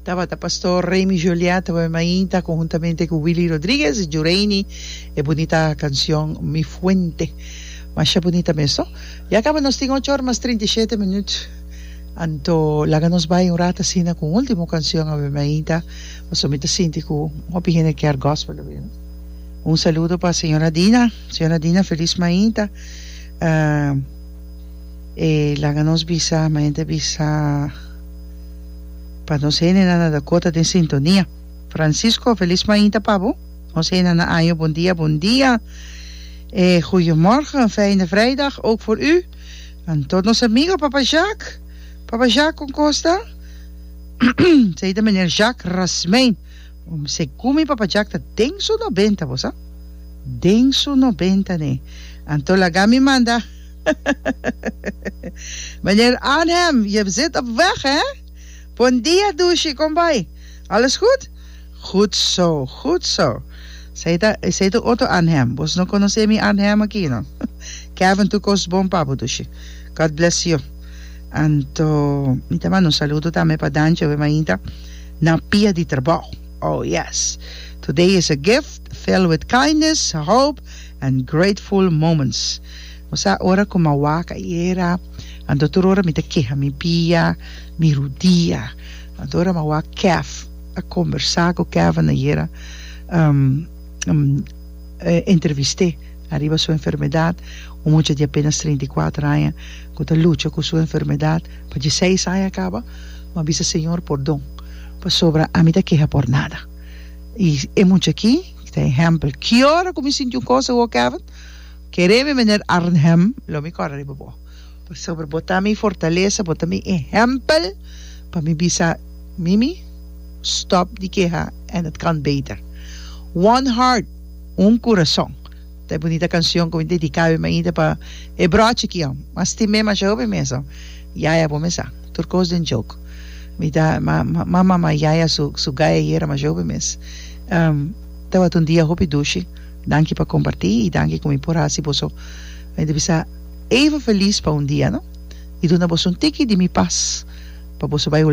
Tabata Pastor Remy Joliat Tabata Mainta conhuntamente cu Willy Rodriguez Jureini e bunita cancion Mi Fuente Masha bunita mes no Ya caba nos tin ocho or mas trinta y shete minut Anto laga nos bay un rat asina cu un ultimo cancion Tabata Mainta pasobra mi ta sinti cu hopi hende kier Gospel ta bini Un saludo pa Señora Dina Señora Dina Feliz Mainta e laga nos bisa Mainta bisa. Pa nos heninan a Dakota den sintonia. Francisco, Felis mainta pa bo. Ons hena na año Bon dia bon dia e Goeiemorgen een fijne vrijdag ook voor u en tot nos amigo papa Jacques papa Jacques kon kosta sei ta meneer Jacques Rasmijn om segun mi papa Jacques ta den su nobenta bosa den su nobenta nee anto laga mi manda Meneer Arnhem, je zit op weg, hè? Bon dia, Dushi, kom bai. Alles goed? Goed zo, goed zo. Esei ta, esei ta otro Arnhem. Bos no conoce mi Arnhem aki, no? Kevin, tu cos bon, papo, Dushi. God bless you. Anto, mi ta manda un saludo tambe pa Dancho, e mainta na pia di trabao. Oh, yes. Today is a gift filled with kindness, hope, and grateful moments. Bo sa ora ku m'a wak ayera, anto tur ora mi ta keha mi bia, mi rudia. Anto ora m'a wak Kev, a kombersá ku Kevin ayera, um, e entrevist'é ariba su enfermedat, un mucha di apenas treinta i kuater aña ku ta lucha ku su enfermedat pa dje seis aña a kaba, m'a bisa, Señor, pordon, pasobra ami ta keha por nada. I e mucha akí ta ehèmpel. Ki ora ku mi sinti un kos awor, Kevin? Kere mi Meneer Arnhem, lo mi kòrda riba bo, pasobra bo ta mi fortalesa, bo ta mi ehèmpel pa mi bisa, Mimi, stòp di keha en het kan beter. One heart, un kurason, ta e bunita kansion ku mi dediká bai mi ainda pa e bròt chikion. M'a stim'é mashahó mi mesun, Yaya bo mes a tur kos den jok. Mi ta m'a mama Yaya su su gaya yera mashahó bai mes. Tabata un dia hopi dushi. Danki pa comparti y danki cu mi por haci boso mende bisa even feliz pa un dia no y duna boso un tiki di mi paz pa boso bay.